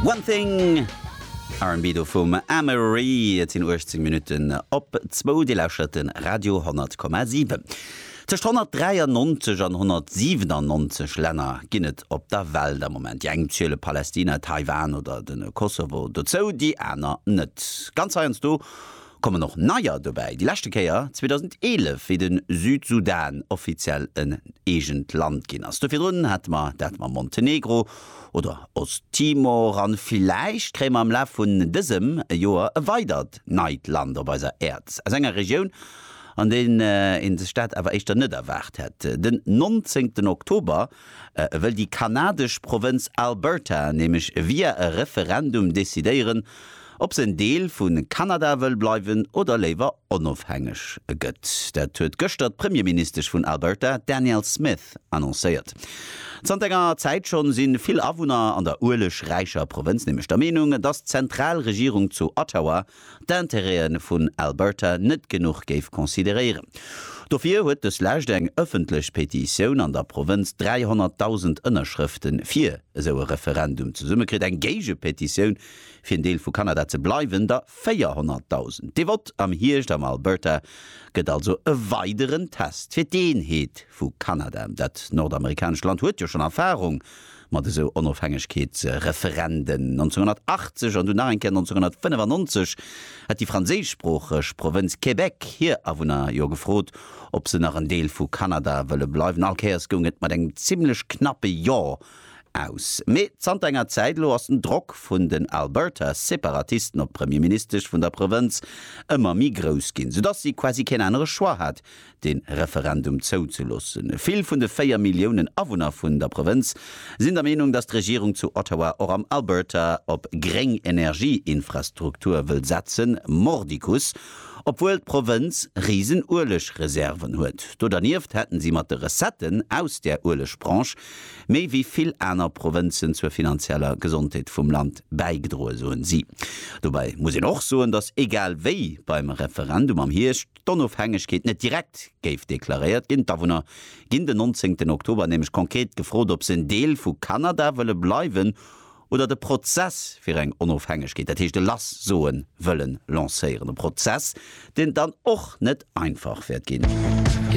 One Thing, R&B do vum Amerie. Et sinn 18 Minutten op zwou. Dir lauschert de Radio 10,7. Tëscht 193 an 197 Länner ginn et op der Welt am Moment. Déi eng ziele Palästina, Taiwan oder de Kosovo dozou, déi aner net. Ganz heiansdo kommen och neier dobäi, déi leschte Kéier 2011, wéi de Südsudan offiziell en eegent Land ginn ass. Do virdrun hate mer dat mam Montenegro oder Osttimor an villäicht kréie mer am Laf vun dësem Joer e weidert neit Land op eiser Äerd aus enger Regioun, an deer ee sech dat awer éischter net erwaart hätt. Den 19 Oktober. E wëll déi kanadesch Provënz Alberta nämlech via e Referendum decidéieren, ob se en Deel vu Kanada wëll bleiwen oder léiwer onofhängeg gëtt. Dat huet gëschter d'Premierministesch vun Alberta, Danielle Smith, annoncéiert. Zanter enger Zäit schonn si vill Awunner an der uelegräicher Provënz nämlech der Meenung, dass d'Zentralregierung zu Ottawa d'Intérêten vun Alberta net genuch géif consideréieren. Dofir huet dës Lescht eng ëffentlech Petitioun an der Provënz 300.000 Ënnerschrëfte fir esou e Referendum zesummekritt, eng Géigepetitioun, fir en Deel vu Kanada ze bleiwen, der 400.000. Dee Vott am Hierscht am Alberta gëtt also e weideren Test fir d'Eenheet vu Kanada. Dat nordamerikanescht Land huet jo schonn Erfarung mat esou Onofhängegkeetsreferenden 1980 an dunn nach eng Kéier 1995, hätt déi franséischsproocheg Provënz Québec hir Awunner jo gefrot, ob se nach en Deel vu Kanada wëlle bleiwen. All Kéiers goung et mat engem zimmlech knappe Jo aus. Mee zanter enger Zäit elo ass den Drock vun den Alberta-Separatisten op d'Premierministesch vun der Provënz ëmmer méi grouss ginn, soudass si quasi keen anere Choix hat, de Referendum zouzeloossen. Vill vun de véier Milliounen Awunner vun der Provënz sinn der Meenung, datt d'Regierung zu Ottawa och am Alberta op gréng Energieinfrastruktur wëll setzen, mordicus, obwuel d'Provënz risen Uelegreserven huet. Do dernieft hätten si mat de Recetten aus där Uelegbranche méi wéi vill aner Provënzen zur finanzieller Gesondheet vum Land bäigedroen, soen si. Dobäi muss een och soen, datt egal wéi beim Referendum am Hierscht, d'Onofhängegkeet net direkt géif deklaréiert ginn. D'Awunner ginn den nonzéngten Oktober nämlech konkret gefrot, ob se en Deel vu Kanada wëlle bleiwen oder de Prozess fir eng Onofhängegkeet, dat heescht e lass soen, wëllen lancéieren. E Prozess, deen et dann och net einfach wäert ginn.